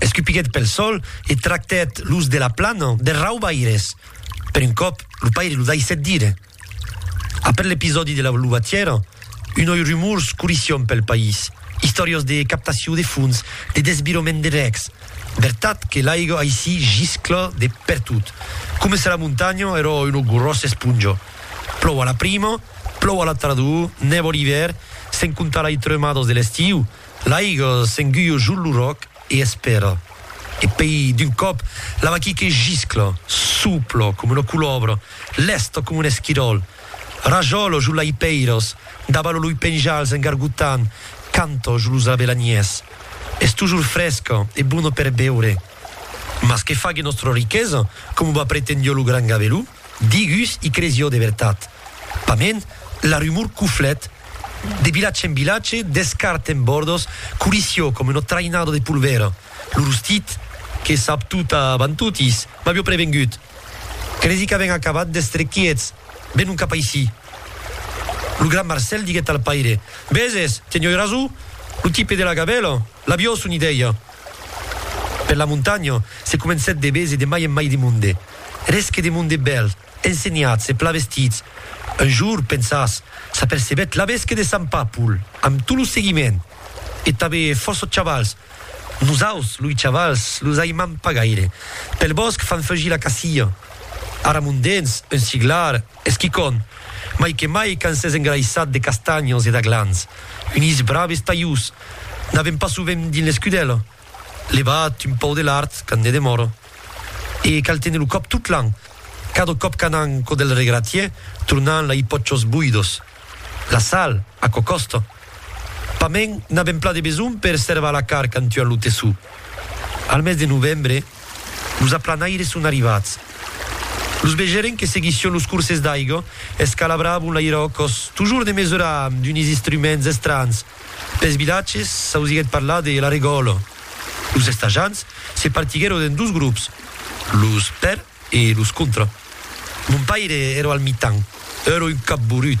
Escupiguèt pel sòl e tractèt los de la plana de raubaires. Per un còp, lo paire lo daissèt dire. Après l'episòdi de la luvatièra, unoi rumors corrission pel país, istòrias de captacion de fons, de desvirament de rècs. Vertat que l'aiga aicí giscla de pertot. Coma se la montanha èra una gròssa esponja. Plòu a la prima, plòu a la tardor, nèva l'ivèr, sens comptar lai tremadas de l'estiu, L'aiga s'enguia jo lo ròc e espèra. E pei, d'un còp, la vaquí que giscla, soupla coma una colòbra, lèsta coma un esquiròl, rajòla jo lai pèiras, dabala loi penjals en gargotant, canta jo los abelanièrs. Es tojor fresca e bona per beure. Mas que fague nòstra riquesa, coma va pretendió lo gran gaveló? Digus i crés jo de vertat. Pament, la rumor cuflèt de vilatge en vilatge, d'escart en bòrdos, curissió com una traïnada de polvèra. Lo rostit, que sap tot avant totis, m'avió prevengut. Cresi qu'avèn acabat d'èstre quiets, venon cap aicí. Lo gran Marcèl diguèt al paire, Veses, tenioi rason, lo tipe de la gavèla. L'avió son idèia per la montanha se comencèt de bèse de mai en mai de monde. Eres que de monde bèl, ensenhats e plan vestits. Un jour, pensas, s'apercebèt laves que de Sant Pàpol, amb tot lo seguiment, e tanbe fòrça chavals. Nosaus, loi chavals, los aimam pas gaire. Pel bòsc fan fugir la cacia. Ara mondèns, un siglar. Es quicòm, mai que mai quand s'es engraissat de castanhos e d'aglans, unis braves talhús, n'avèm pas sovent dins l'escudèla, levat un pauc de lard quand ne demòra. E cal téner lo còp tot l'an, cada còp qu'anam cò del regratier, tornam la i pòchos boidos. La sal, aquò còsta. Pas mèn n'a ben plan de besonh per servar la carn quand tuan lo tessó. Al mes de novembre, los aplanaires son arrivats. Los vegèren que seguission los corses d'aiga, escalabravan l'airòcòs, tojors de mesurar amb d'unis istruments estranhs. Pels vilatges, s'ausiguèt parlar de la regòla. Los estajants se partiguèron en dos grops, los per. E los contra. Mon paire ero al mitan. Ero un capborut.